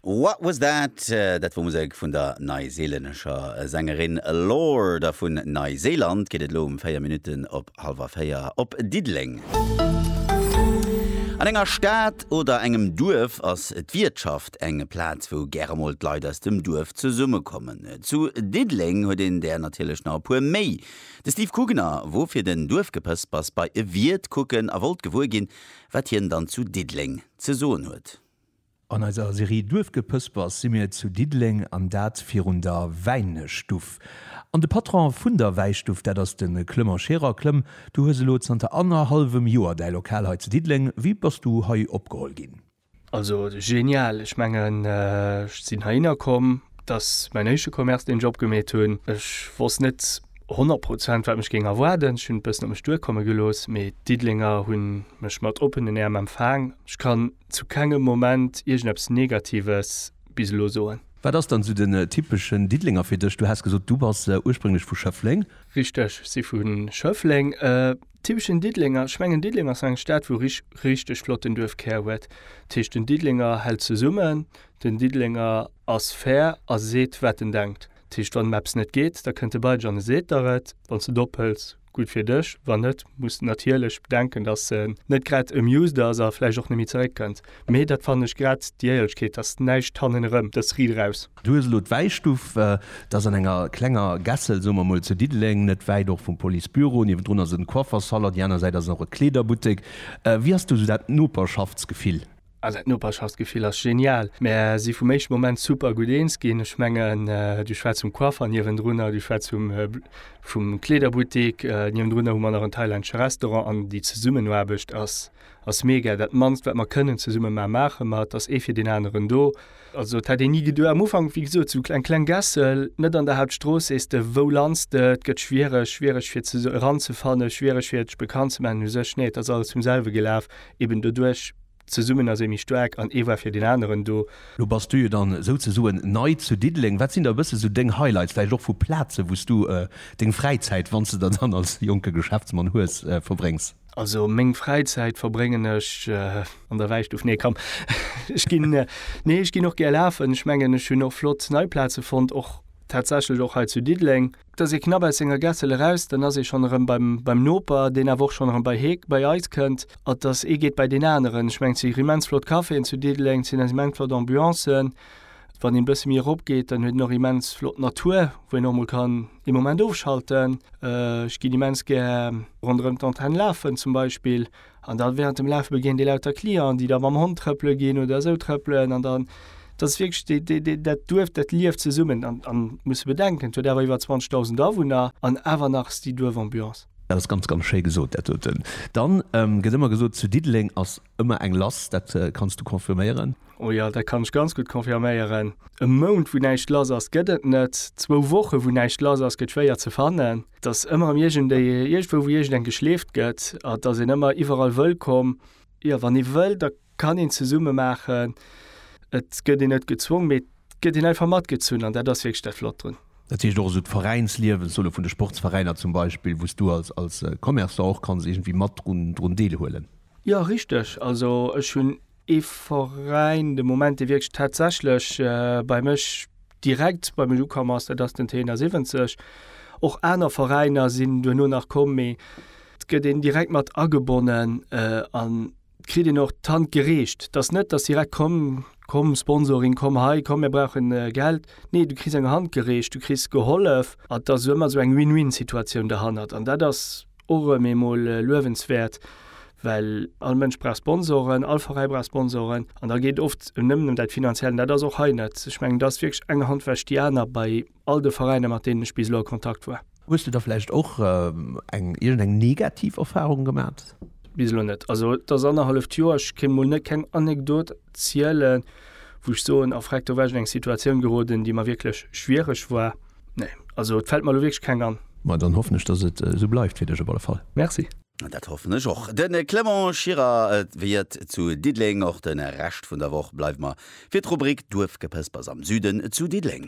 What Was That? Dat wor Musek vun der neiseelännescher Sängerin Lorde. A vun Neiseeland geet et elo um 4 Minutten op hallwer 4 op Diddeleng. An enger Stad oder engem Duerf ass d'Wiertschaft eng Plaz, wou gäre emol d'Leit aus dem Duerf zesummekommen. Zu Diddeleng huet een där natierlech nach e puer méi. De Steve Kugener wor fir den Duerfgepëspers bei e Wiert kucken a wollt gewuer ginn, Wat hien dann zu Diddeleng ze soen huet. An eiser Serie Duerfgepëspers si mir zu Diddeleng an dat virun der Wäinestuff. An de Patron vun der Wäistuff, dat ass de Clement Scherer. Clem, du hues elo zanter annerhallwem Joer däi Lokal hei zu Diddeleng. Wéi bass du hei opgeholl ginn? Also genial, ech mengen ech sinn heihinner komm, et ass mäin éischte Commerce deen ech opgemeet hunn. Ech wosst net 100 Prozent wat mech géing erwaarden, ech hunn et e bëssen op mech duerkomme gelooss, mee d'Diddelenger hunn mech mat oppenen Äerm empfaang. Ech kann zu kengem Moment iergendeppes Negatives bis elo soen. Wat ass dann esou den typeschen Diddelenger fir dech? Du has gesot du bass ursprénglech vu Schëffleng. Richteg, ech si vu Schëffleng. Typeschen Diddelenger, ech mengen Diddeleng ass eng Stad wou rich richteg flotten Duerfkär huet. Dat heescht den Diddelenger hält zesummen, den Diddelenger ass fair a seet wat en denkt. Dat heescht wann em eppes net geet, da kënnt e bei dech an e seet der et. Wann s et ophëls, gutt fir dech, wann net muss de natierlech bedenken, datt en net grad amused ass a vläicht och net méi zeréck kënnt. Mee dat fannen ech grad d'Jäierlechkeet, dass näischt hannen erëm, dass Ried eraus. Du hues elo d'Wäistuff, dat ass an enger klenger Gässel, soe mer emol zu Diddeleng, net wäit och vum Policebüro. Niewendrun ass en Coiffersalon, déi aner Säit ass och e Kleederbuttek. Wéi ass do esou dat Noperschaftsgefill? Also dat Noperschaftsgefill ass genial. Mär si vum éischte Moment super gutt eens ginn. Ech mengen, du schwätz vum Coiffer niewendrunner, du schwätz vum Kleederbuttek niewendrunner, hu mer nach en thailännesche Restaurant an déi Zesummenaarbecht ass ass mega, dat mannst wat mer kënnen zesumme maan maache mer, et ass ee fir deen aneren do. Also et hätt een ni geduecht, am Ufank wéi gesot sou eng kleng Gässel net an der Hauptstrooss, sees de wou lands de, et gëtt schwiereg, schwiereg fir ze eran ze fannen, schwiereg fir dech bekannt ze maachen u sech, nee et ass alles vum selwe gelaf, eben doduerch zesummen ass ee méi staark an ee war fir deen aneren do. Lo bass du jo dann souzesoen nei zu Diddeleng, wat sinn da e bësse sou deng Highlights vläicht och vu Plazen wou s du deng Fräizäit, wann s de der dann als jonke Geschäftsmann hues, verbréngs? Also meng Fräizäit verbréngen ech an der Wäistuff. Nee, komm, ech ginn, nee, ech ginn och gär lafen. Ech mengen, ech hunn och flott nei Plaze fonnt, och tatsächlech och hei zu Diddeleng. Da ass ee knapp aus senger Gässel eraus, dann ass ee schonn erëm beim Noper, deen awer och schonn erëm bei hie, bei eis kënnt. An dass ee geet bei deen aneren. Ech mengen, et si immens flott Caféen zu Diddeleng, et sinn eis immens flott Ambiancen. Wann een e bësse méi eropgeet, dann huet een och immens flott Natur, wou een och emol kann. dee Moment ofschalten. Ech ginn immens gär ronderëm d'Antenne lafen zum Beispill. An da während dem Lafe begéint ee lauter Clienten, déi da mam Hond trëppele ginn oder esou trëppelen. An dann, dat ass wierklech dee, dee, dee, dat Duerf, dat lieft zesummen. An, an muss e bedenken, et huet awer iwwer 20.000 Awunner an awer nach ass déi Duerfambiance. Dat ass ganz, ganz schéi gesot, dat doten. Dann gëtt ëmmer gesot, zu Diddeleng ass Ëmmer eng lass, dat kanns du confirméieren? O jo, dat kann ech ganz gutt confirméieren. E Mount, wou näischt lass ass, gëtt et net. Zwou Woche, wou näischt lass ass, gëtt schwéier ze fannen. Et ass ëmmer erëm iergendee, iergendwou, wou iergendeng geschleeft gëtt. Et ass een ëmmer iwwerall wëllkomm. Jo, wann ee wëll, da kann een zesumme maachen. Et gëtt een net gezwongen, mee et gëtt een einfach matgezunn an dat ass wierklech dat Flott drun. Dat heescht och esou d'Veräinsliewen, solo vun de Sportsveräiner zum Beispill, wou s du als Commerçant och kanns iergendwéi mat drun deelhuelen? Jo richteg, also ech hunn ee Veräin de Moment dee wierklech tatsächlech bei mech direkt bei mech ukomm ass, dat ass den T 71. Och aner Veräiner sinn duerno nach komm, mee et gëtt een direkt mat agebonnen an et kritt een och d'Hand gereecht. Et ass net, datt direkt komm, komm Sponsoring, komm hei, komm mir brauchen Geld. Nee, du kriss eng Hand gereecht, du kriss gehollef an et ass ëmmer esou eng Win-Win-Situatioun derhannert an dat ass, och rem eemol luewenswäert, well all Mënsch brauch Sponsoren, all Veräi brauch Sponsoren an da geet oft nëmmen em dat Finanziellen. Dat ass och hei net, ech mengen, et ass wierklech eng Hand wäscht déi aner bei all de Veräiner, mat deenen ech bis elo a Kontakt war. Hues du da vläicht och eng iergendeng negativ Erfarung gemat? Bis elo net. Also et ass annerhalleft Joer, ech kéint mol net keng Anekdot zielen, wou ech soen, a freck, do war ech an eng Situatioun geroden, déi mer wierklech schwiereg war. Nee, also et fällt mer elo wierklech keng an. Ma dann hoffen ech, dass et esou bleift fir dech op alle Fall. Merci. Dat hoffen ech och. De Clement Schirrer wiert zu Diddeleng. Och de Rescht vun der Woch bleiwe mer fir d'Rubrik Duerfgepëspers am Süden zu Diddeleng.